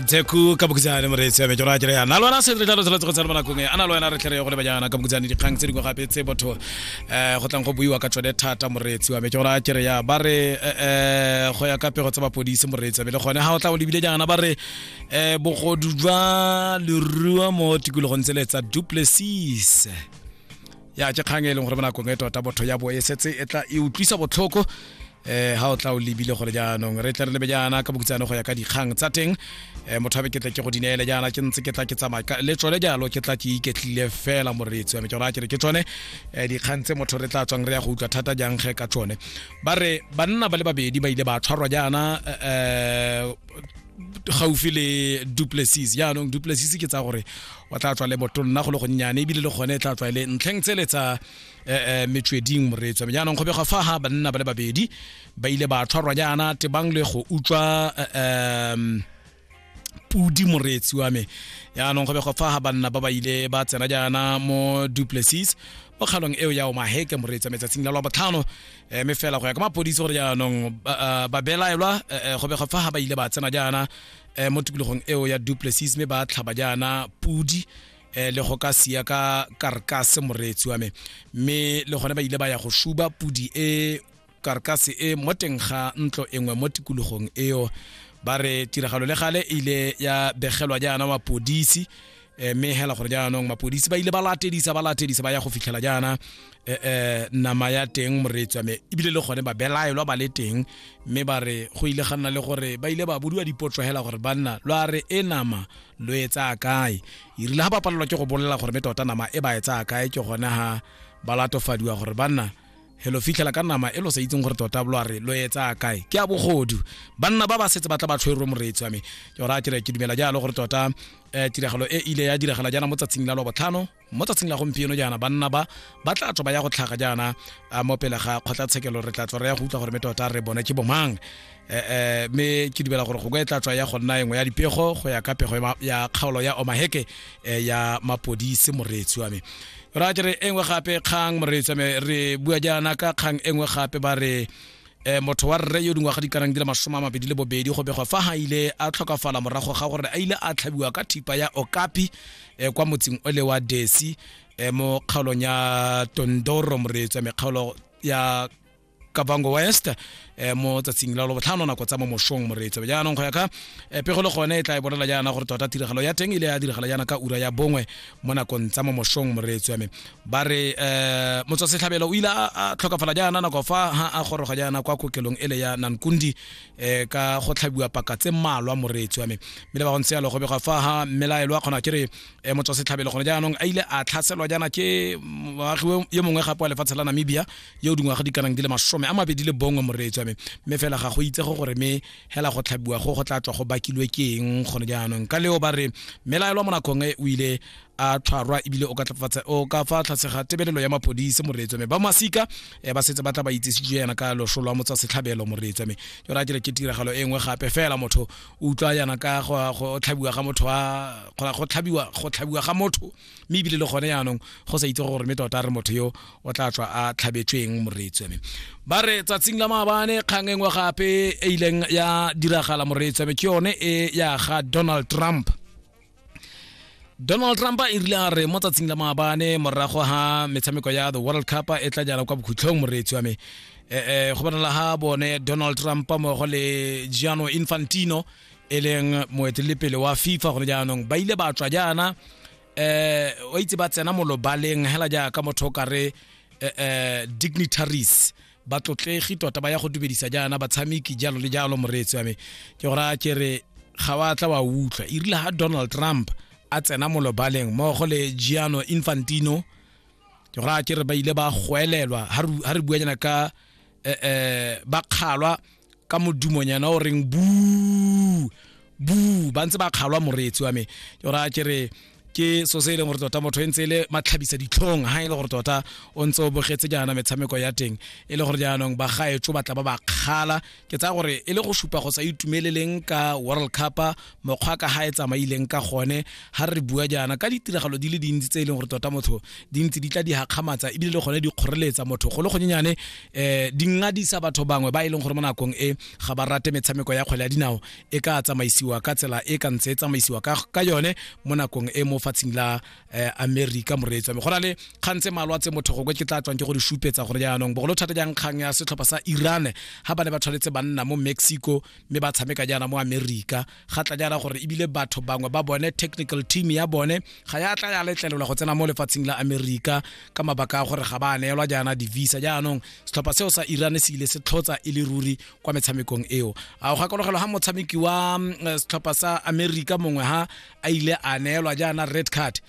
teku ka bokhutshane moreetsi ya mejora kere yana lwana se re tla lotsela tsogo tsana bonakong ana lo wena re tlhere go le banyana ka bokhutshane dikgang tse dingwe gape tse botho um go tlang go buiwa ka tsone thata moreetsi wa mejora kere ya ba re um go ya ka pego tsa bapodisi moreetsi be le gone ga o tla o lebile jaana ba re um bogodu jwa lerua mo tikologong tsele tsa duplessis ya ke kgang e leng gore bonakong e tota botho ya bo e setse e tla e utlwisa botlhoko eh ha o tla o lebile gore jaanong re tle re lebe jaana ka bokutsano go ya ka dikgang tsa teng eh mothabe ke tla ke go dineele jaana ke ntse ke tla ke tsamaya ka le tsone jalo ke tla ke iketlile fela moreetsi wa me ke raya ke re ke tsone eh dikgang tse motho re tla tswang re ya go utlwa thata jang ge ka tsone ba re banna ba le babedi ba ile ba tshwarwa jaana eh gaufi le duplessis jaanong duplessis ke tsa gore o tla tswa le botonna go le gonnyane ebile le gone e tla tswa e le ntlheng tsele tsa eh, eh, metsweding moreetswa jaanong go begwa fa ha banna ba le babedi ba ile ba tshwarwa jaana tebang le go utswa eh, pudi moreetsi wa me yaanong go begwa fa ha banna ba ba ile ba tsena jaana mo duplessis mo kgalong eo ya omaheke moreetsi wa metsatsing la lwa botlhano um eh, me fela go ya ka mapodisi gore jaanong eh, ba belaelwa eh, go begwa fa ha ba ile ba tsena jaana um mo tikologong eo ya duplessis me ba tlhaba jaana pudi eh le go ka sia ka karkase moreetsi wa me mme le gone ba ile ba ya go shuba pudi e karkase e mo teng ga ntlo engwe mo tikologong eo ba re tiragalo le gale e ile ya begelwa jaana mapodisi eh, mme hela gore jaanong mapodisi ba ile ba latedisa ba latedisa ba ya go fitlhela jaana e, e, nama ya teng moreetswa me ebile le gone ba belaelwa ba le teng mme ba re go ile ga nna le gore ba ile ba bodiwa dipotso hela gore banna lo a re e nama lo e tsaya kae irile ga ba palelwa ke go bolelela gore me tota nama e ba e tsaya kae ke gone ha ba latofadiwa gore banna helo fitlhela ka nama e lo sa itseng gore tota lo a re lo e tsaya kae ke a bogodu banna ba ba setse ba tla ba tshwerwe moreetsi wa me ke gore a kere ke dumela jalo gore tota um tiragalo e ile ya diragala jaana mo tsatsing la lwa botlhano mo tsatsing la gompieno jaana banna ba ba tla tswa ba ya go tlhaga jaana mo pele ga kgotlatshekelo re tla tswa re ya go utlwa gore me tota re bone ke bomang um mme ke dumela gore go ka e tla tswa ya go nna engwe ya dipego go ya ka pego ya kgaolo ya omaheke eh, ya mapodise moreetsi wa me ra ke re engwe gape kgang moreetsi wa me re bua jaana ka kgang engwe gape ba re e motho wa rre yo dingwaga di kanang di le masome a mabedi le bobedi go begwa fa ga ile a tlhokafala morago ga gore a ile a tlhabiwa ka thipa ya okapi e kwa motseng o le wa desi e mo kgaolong ya tondoro moreetso ya mekgaolo ya kabango west eh, mo tsatsing la lobotlhano nako tsa mo mosong moreetso jaanong go ya ka eh, pego le gone e tla e bolela jaana gore tota tiragalo ya teng ile ya diragala jaana ka ura ya bongwe mo nakong tsa mo mosong moreetso ya me ba re eh motswasetlhabelo o ile a tlhokafala jaana nako fa ha a goroga jaana kwa kokelong ele ya nankundi eh ka go tlhabiwa paka tse mmalwa moreetsi wa me mme le ba gontse yalo go bega fa ha mmelaelo a kgona ke re eh, motswasetlhabelo gone jaanong a ile a tlhaselwa jaana ke moagi ye mongwe gape wa lefatshe la namibia yo dingwaga di kanang di le masome a mabedi le bongwe moreetsi wa me mme fela ga go itse go gore me hela go tlhabiwa go go tla tswa go bakilwe ke eng gone jaanong ka leo ba re mmelaelo mo nakong e o ile a tshwarwa ebile o ka tlafatsa o ka fa tlase ga tebelelo ya mapodisi moreetso me ba masika eh, ba setse ba tla ba itsesitse yana ka losho lwa motsa setlhabelo moreetso me ke ra kere ke tiragalo e nngwe gape fela motho o utlwa yana ka go tlhabiwa ga motho wa go tlhabiwa go tlhabiwa ga motho mme ebile le gone yaanong go sa itse gore mme tota re motho yo o tla tswa a tlhabetsweng moreetso me ba re tsatsing la maabane kgang e nngwe gape e ileng ya diragala moreetso me ke yone e ya ga Donald Trump donald trump e rile a re mo tsatsing la maabane morago ga metshameko ya the world cup e tla jala kwa bokhutlhong moreetsi wa me um go bonala ga bone donald trump mmogo le giano infantino e leng moeteledipele wa fifa gone jaanong ba ile ba tswa jaana um wa itse ba tsena molobaleng hela jaaka motho o kare um dignitaries batlotlegi tota ba ya go dumedisa jaana batshameki jalo le jalo moreetsi wa me ke gore a kere ga wa tla wa utlwa e rile ga donald trump a tsena molobaleng mmogo le giano infantino ke gore a kere ba ile ba goelelwa ga re buanyana ka um bakgalwa ka modumonyana o reng bu bu ba ntse ba kgalwa moreetsi wa me ke gore a ke re ke so se e leng gore tota motho e ntse e le matlhabisa ditlhong ga e le gore tota o ntse o bogetse jaana metshameko ya teng e le gore jaanong ba gaetso ba tla ba ba kgala ke tsaya gore e le go supa go sa itumeleleng ka world cup mokgwa ka ga e tsamaileng ka gone ga re bua jaana ka ditiragalo di le dintsi tse e leng gore tota motho di ntse di tla di gakgamatsa ebile le gone di kgoreletsa motho go le gonyenyane um di ngadisa batho bangwe ba e leng gore mo nakong e ga ba rate metshameko ya kgwele ya dinao e ka tsamaisiwa ka tsela e ka ntse e tsamaisiwa ka yone mo nakong e mo fatsheng la eh, america moreetsi wa me go na le kgang tse malwa tse motho gokwe ke tla tswang ke go di supetsa gore jaanong bogolo thata jang kgang ya setlhopha sa iran ga ba ne ba tshwanetse banna mo mexico mme ba tshameka jaana mo america ga tla jaana gore ebile batho bangwe ba bone technical team ya bone ga ya tla ya letlelelwa go tsena mo lefatsheng la america ka mabaka a gore ga ba neelwa jaana di-visa jaanong setlhopha seo sa iran se ile se tlhotsa e le ruri kwa metshamekong eo a go gakologelwa ga motshameki wa mm, eh, setlhopha sa america mongwe ha a ile a neelwa jaana red card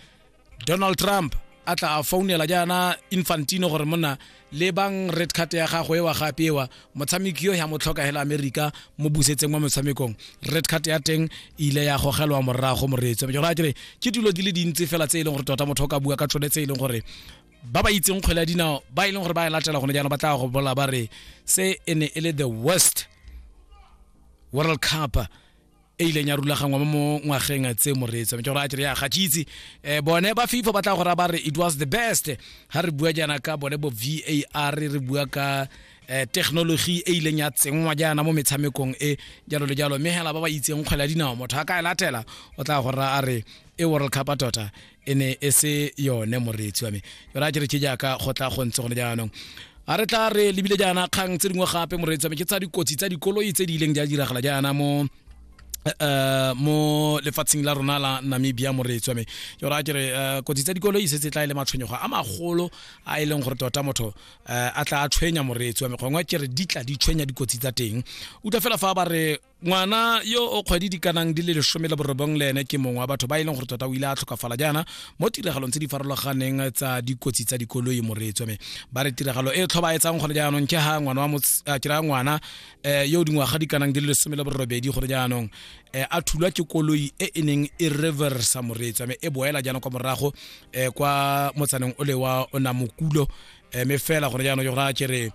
donald trump a tla a founela jaana infantino gore monna le bang red card ya gagwe ewa gape ewa motshameki yo ya mo tlhoka hela america mo busetseng wa motshamekong red card ya teng e ile ya gogelwa morago moreetso ke gore kere ke dilo di le dintsi fela tse e leng gore tota motho o ka bua ka tsone tse e leng gore ba ba itseng kgwele ya dinao ba e leng gore ba e latela gone jaanong ba tla go bola ba re se e ne e le the worst world cup e ileng ya rulagangwa mo mo ngwageng tse moreetso ke gore a kere ya gatsitse um bone ba fifa ba tla go raya ba re it was the best ga re bua jaana ka bone bo var re bua ka um technology e ileng ya tsenngwa jaana mo metshamekong e jalo le jalo mme hela ba ba itseng kgwele ya dinao motho a ka e latela o tla go raya a re e world cup tota e ne e se yone moreetsi wa me yona ke re ke jaaka go tla go ntse gone jaanong a re tla re lebile jaana kgang tse dingwe gape moreetsi wa me ke tsa dikotsi tsa dikoloi tse di ileng di a diragala jaana mo uh mo lefatsheng la rona la namibia moreetswa me ke ra ke re eh, kotsi tsa dikolo e setse tla e le matshwenyego a magolo a e leng gore tota motho eh, a tla a tshwenya moreetswa me gongwe ke re di tla di tshwenya dikotsi tsa teng utlwa fela fa ba re ngwana yo o kgwedi di kanang di le lesome le borobong le ene ke mongwe wa batho ba e leng gore tota o ile a tlhokafala jaana mo tiragalong tse di farologaneng tsa dikotsi tsa dikoloi moreetswa me ba re tiragalo e tlhobaetsang gone jaanong ke ha ngwana wa ah, ke raya ngwana um yo dingwaga di kanang di le lesome le borobedi gone jaanong um a thulwa ke koloi e e neng e reversa moreetswa me e boela jaanong kwa morago um kwa motsaneng o le wa onamokulo um me fela gone jaanong ke gore a kere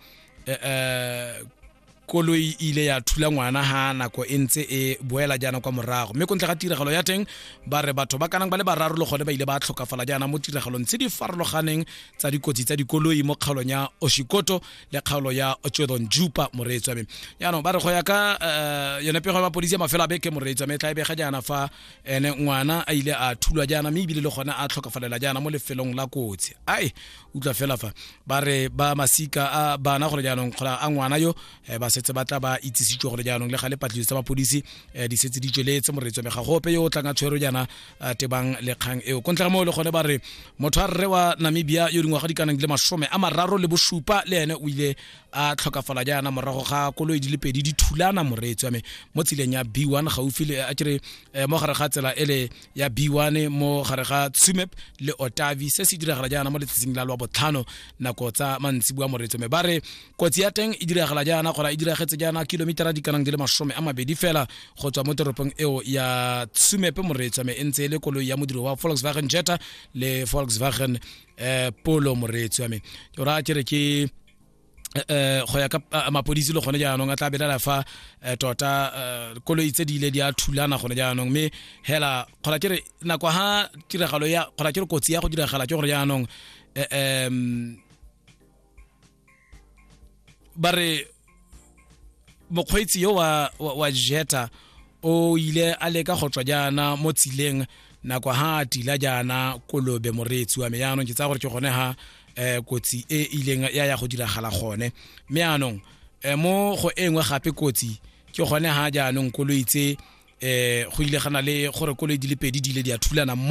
um koloi e ile ya thula ngwana ha nako e ntse e boela jaana kwa morago mme kontle ga tiragalo ya teng ba re batho ba kanang ba le bararo le gone ba ile ba tlhokafala jaana mo tiragalong tse di farologaneng tsa dikotsi tsa dikoloi mo kgaolong ya oshikoto le kgaolo ya chodon jupa moreetswa me jaanong ba re go ya ka eh, yone pego ya mapodisi ya mafelo a beke moreetswa me tla e bega jaana fa ene ngwana a ile a thulwa jaana mme ebile le gone a tlhokafalela jaana mo lefelong la kotsi ai utlwa fela fa ba re ba masika a bana gore jaanong kgola a ngwana yo eh, ba setse ba tla ba itsisitswe gore jaanong le ga le patlisiso tsa mapodisi eh, di setse di tsweletse moreetso mme ga gope yo o tlang a tshwere jaana eh, tebang lekgang eo ko ntlha moo le gone ba re motho a rre wa namibia yo dingwaga di kanang le masome a mararo le bosupa le ene o ile a tlhokafala jaana morago ga koloi di le pedi di thulana moreetso ame mo tseleng ya b1 gaufi le a kere mo gare ga tsela e le ya b1 mo gare ga tsumep le otavi se se diragala jaana mo letsatsing la lwa botlhano nako tsa mantsibua moretso me ba re kotsi ya teng e diragala jaana gora e diragetse jaana kilomitara di kanang di le masome a mabedi fela go tswa mo toropong eo ya tsumep moretso me e ntse e le koloi ya modiro wa volkswagen jetta le volkswagen eh, polo moretso ya me ora ke re ke eh go ya ka eh, mapodisi le gone jaanong a tla belela fa eh, tota eh, koloi tse di ile di a thulana gone jaanong mme hela kgona ke re nako ha tiragalo ya kgona ke re kotsi ya go diragala ke gore jaanong um ba re mokgweetsi yo wa, wa, wa jeta o ile a leka go tswa jaana mo tsileng nako ha a tila jaana kolobe moreetsi wa me jaanong ke tsaya gore ke gone ha eh kotsi e ileng ya ya go diragala gone mme anong eh, mo go e nngwe gape kotsi ke gone ha jaanong koloi tse eh go ile gana le gore koloi di le pedi di ile di a thulana